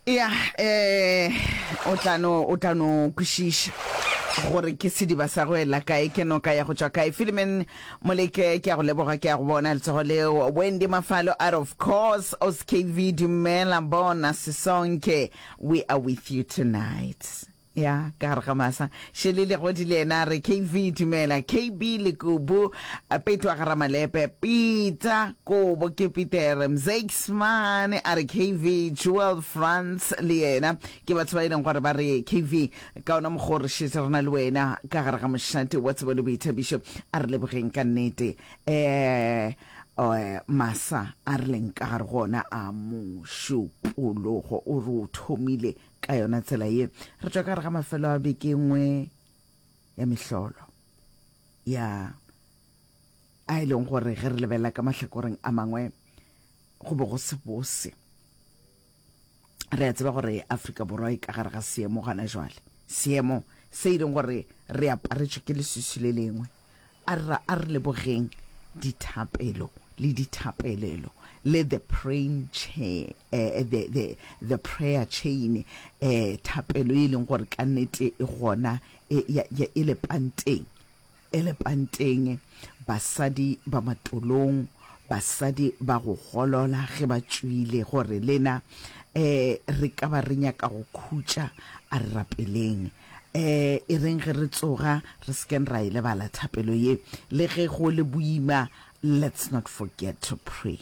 ya um o tla no o tla no kwešiša gore ke sediba sa go ela kae ke noka ya go tšwa kae filimen moleke ke ya go leboga ke ya go bona letsogo leo wendy mafalo out of course oskv dumela bona sesonke we are with you tonight Ya ka gare ga masa. Shelly Legodi le yena a re, KV, dumela. KB, Lekubu, Petwa ga Ramalepe, Pita, Kobo, ke Pitere. Mzeiksmane a re, KV, Jewel, Frans le yena ke batho ba e leng gore ba re, KV, ka ona mokgwa o re šetše re na le wena ka gare ga mošate wa tsebo le boithabišo. A re lebogeng ka nnete. Ee, masa a re leng ka gare go ona a mošupologo o re o thomile Ka yona tsela ye, re tšwa ka gare ga mafelo a beke nngwe ya mehlolo ya a e leng gore ge re lebelela ka mahlakoreng a mangwe go be go se bose. Re a tseba gore Afrika Borwa e ka gare ga seemo gana jwale, seemo se e leng gore re aparetšwe ke leswiswi le lengwe. A re ra a re lebogeng dithapelo le dithapelelo le the praying chair, eh, the, the, the prayer chain, eh, thapelo e leng gore ka nnete e gona e, ya, ya, e lepanteng e lepanteng basadi ba matolong basadi ba go golola ge ba tšwile gore lena eh re ka ba re nyaka go khutša a re rapeleng Ee, e reng ge re tsoga re se keng ra e lebala thapelo ye. Le ge go le boima, let's not forget to pray.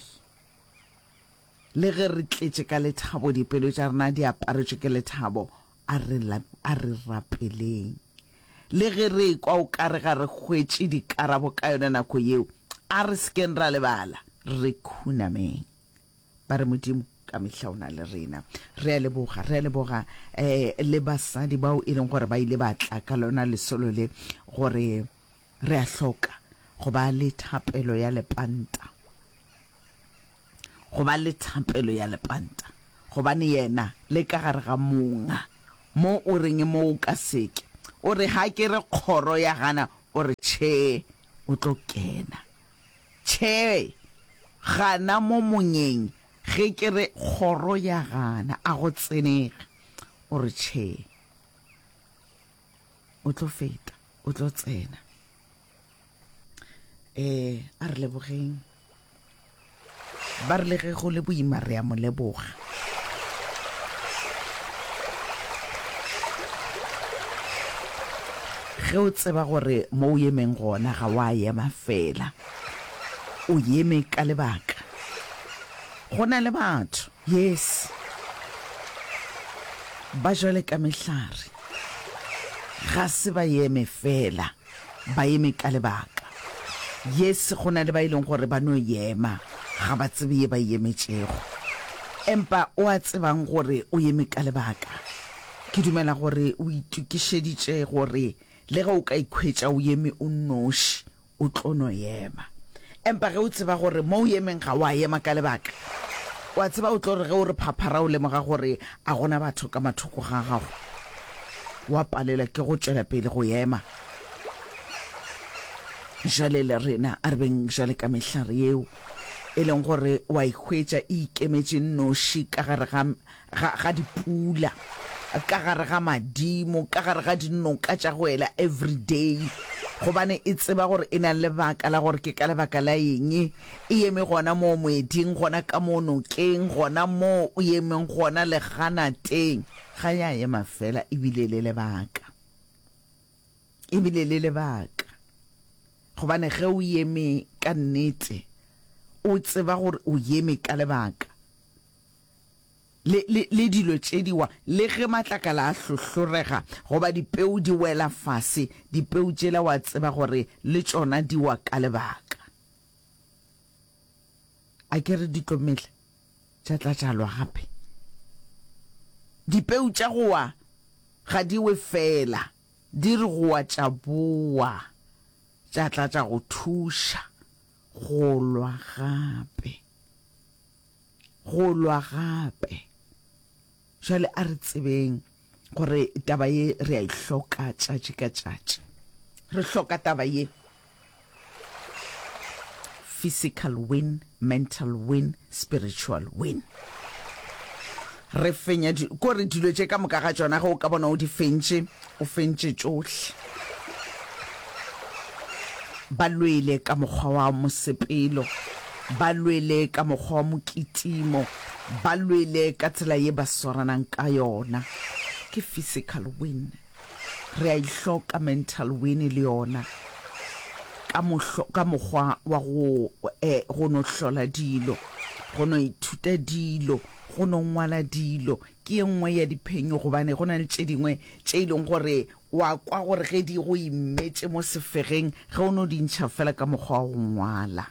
Le ge re tletše ka lethabo, dipelo tša rena di aparetšwe ke lethabo, a re, a re rapeleng. Le ge re ekwa o ka re ga re hwetše dikarabo ka yona nako yeo, a re se keng ra lebala, re khunameng. Ba re, Modimo, ka mehla o na le rena. Re a leboga, re a leboga um le basadi bao e leng gore ba ile ba tla ka lona lesolo le, gore re a hloka go ba le thapelo ya lepanta, go ba le thapelo ya lepanta, gobane yena le ka gare ga monga mo o reng e mo o ka seke, o re ga ke re kgoro ya gana, o re tšhee o tlo kena. Tjhee, gana mo monyeng. Ge ke re, Kgoro ya gana, a go tsenega. O re, Tjhee. O tlo feta, o tlo tsena. Ee, a re lebogeng. Ba re le ge go le boima re a mo leboga. Ge o tseba gore mo o emeng gona ga wa ema fela, o eme ka lebaka. Go na le batho, yes, ba jwale ka mehlare, ga se ba eme fela. Ba eme ka lebaka. Yes, go na le ba e leng gore ba no ema, ga ba tsebe ye ba e emetšego. Empa o a tsebang gore o eme ka lebaka? Ke dumela gore o itokišeditše gore le ge o ka ikhwetša o eme o nnoši, o tlo no ema. Empa ge o tseba gore mo o emeng ga o a ema ka lebaka, o a tseba o tlo re ge o re phaphara o lemoga gore a go na batho ka mathoko ga gago, o a palelwa ke go tšwela pele go ema. Bjale le rena a re beng bjale ka mehlare yeo, e leng gore o a e hwetša e ikemetše nnoši ka gare ga ga, ga dipula, ka gare ga madimo, ka gare ga dinoka tša go ela everyday, gobane e tseba gore e na le lebaka la gore ke ka lebaka la eng e eme gona moo moeding, gona ka moo nokeng, gona moo o emeng gona leganateng. Ga ya ema fela, ebile le lebaka, ebile le lebaka, gobane ge o eme ka nnete, o tseba gore o eme ka lebaka. le, le, le dilo tše di wa, le ge matlakala a hlohlorega, goba dipeu di wela fase, dipeu tšela wa tseba gore le tšona di wa ka lebaka. A ke re di tlo mela, tša tla tša lwa gape. Dipeu tša go wa ga di we fela, di re go wa tša bowa, tša tla tša go thuša go lwa gape. go lwa gape. Jwale a re tsebeng gore taba ye re a e hloka tšatši ka tšatši. Re hloka taba ye. Physical win, mental win, spiritual win. Re fenya di, ko re dilo tše ka moka ga tšona ge o ka bona o di fentše, o fentše tšohle. Ba lwele ka mokgwa wa mosepelo, ba lwele ka mokgwa wa mokitimo, ba lwele ka tsela ye ba swaranang ka yona. Ke physical win. Re a e hloka mental wene le yona ka mohlo, ka mokgwa wa go eh, go no hlola dilo, go no ithuta dilo, go no ngwala dilo. Ke ye nngwe ya diphenyo gobane go na le tše dingwe tše e leng gore wa kwa gore ge di go imetše mo sefegeng ge o no di ntšha fela ka mokgwa wa go ngwala,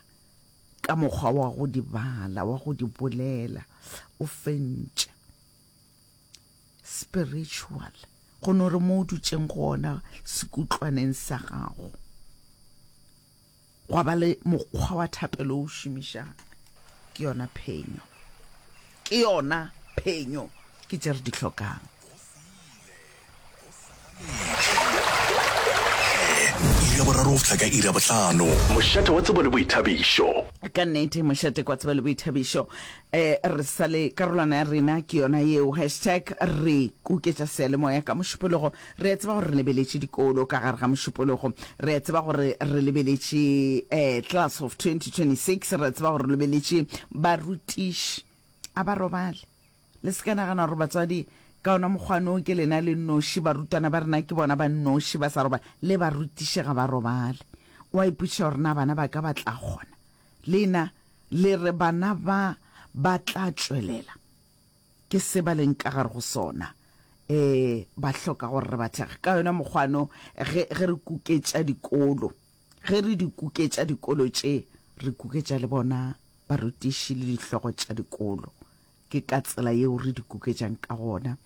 ka mokgwa wa go di bala, wa go di bolela o fentše. Spiritual, go no re mo o dutšeng gona sekutlwaneng sa gago gwa ba le mokgwa wa thapelo o šomišang. Ke yona phenyo, ke yona phenyo, ke tše re di hlokang. iri ya boraro go fihla ka iri ya bohlano mošate wa tsebo le boithabišo ka nnete mošate kwa tseba le boithabišo um re sa le karolwana ya rena ke yona yeo hashtag re kuketša sealemoya ka mošupologo re a tseba gore re lebeletše dikolo ka gare ga mošupologo re a tseba gore re lebeletše um class of 2026 re a tseba gore re lebeletše barutiši a ba robale Le se ka nagana gore batswadi ka ona mokgwano ke lena le nnoši, barutwana ba rena ke bona ba nnoši ba sa roba, le barutiši ga ba robale. O a ipotšiša gore na bana ba ka ba tla kgona? Lena le re bana ba ba tla tšwelela. Ke se ba leng ka gare go sona. E, ba hloka gore re ba thekge. Ka yona mokgwano, ge, ge re kuketša dikolo, ge re di kuketša dikolo tše, re kuketša le bona barutiši le dihlogo tša dikolo. ke ka tsela yeo re di kuketšang ka gona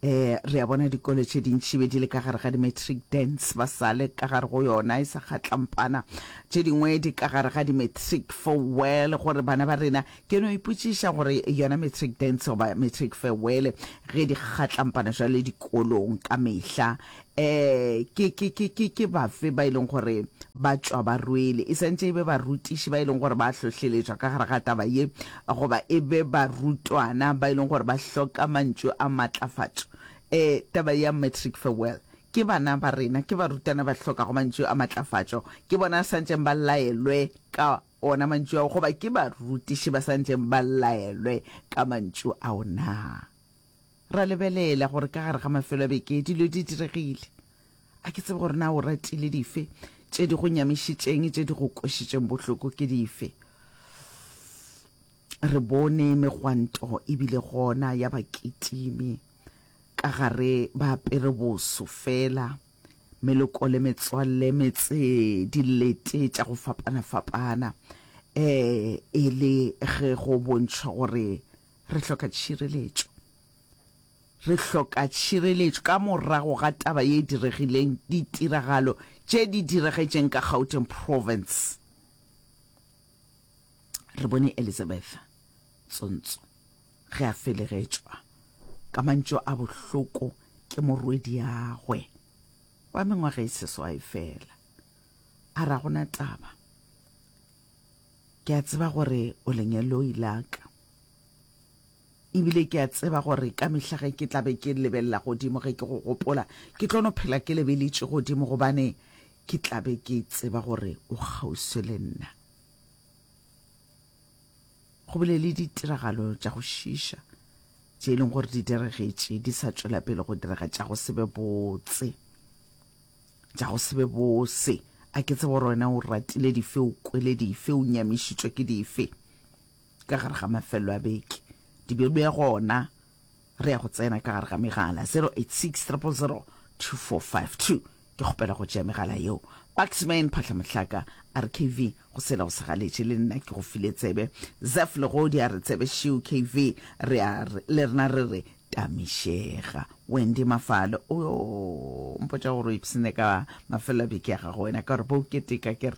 eh re a bona dikolo tše dintši be di le ka gare ga di-matric dance ba sa le ka gare go yona e sa kgatlampana tše dingwe di ka gare ga di-matric farewell gore bana ba rena ke no ipotšiša gore yona matric dance goba matric farewell ge di kgatlampana jwale dikolong ka mehla Ee, ke, ke, ke, ke, ke bafe ba e leng gore ba tšwa ba rwele? E santše e be barutiši ba e leng gore ba hlohleletšwa ka gare ga taba ye, goba e be barutwana ba e leng gore ba hloka mantšu a matlafatšo? Ee, taba ya Matric Farewell. Ke bana ba rena, ke barutwana ba hlokago mantšu a matlafatšo. Ke bona a santšeng ba laelwe ka ona mantšu ao, goba ke barutiši ba santšeng ba laelwe ka mantšu ao na? Ra lebelela gore ka gare ga mafelo a beke dilo di diregile. A ke tsebe gore na o ratile dife, tše di go nyamišitšeng, tše di go kwešitšeng bohloko ke dife. Re bone megwanto e bile gona ya bakitimi ka gare ba apere boso fela, meloko le metswalle, metse, dilete tša go fapana-fapana, ee, e le ge go bontšhwa gore Re hloka tšhireletšo. Re hloka tšhireletšo ka morago ga taba ye diregileng, ditiragalo tše di diregetšeng ka Gauteng Province. Re bone Elizabeth Tsontso ge a felegetšwa ka mantšu a bohloko ke morwediagwe wa mengwaga e seswai fela, a ra gona taba. Ke a tseba gore o lenyaloi la ka. Ebile ke a tseba gore ka mehla ge ke tla be ke lebelela godimo ge ke go gopola, ke tlo no phela ke lebeletše godimo gobane ke tla be ke tseba gore o kgauswi le nna. Go bile le ditiragalo tša go šiša tše e leng gore di diregetše, di sa tšwela pele go direga tša go se be botse. Tša go se be bose. A ke tsebe gore wena o ratile dife, o kwele dife, o nyamišitšwe ke dife. Ka gare ga mafelelo a beke, Dibjalo ya gona re ya go tsena ka gare ga megala 0860002452. Ke kgopela go tšea megala yeo. Baxman Phahlamohlaka a re KV go sela go segaletše, le nna ke go file tsebe. Zef Legodi a re tsebe šeo KV, re a, le rena re re Tamišega. Wendy Mafale, O yo mpotša gore o ipshine ka mafelelo a beke ya gago wena ka gore bo o keteka ke re.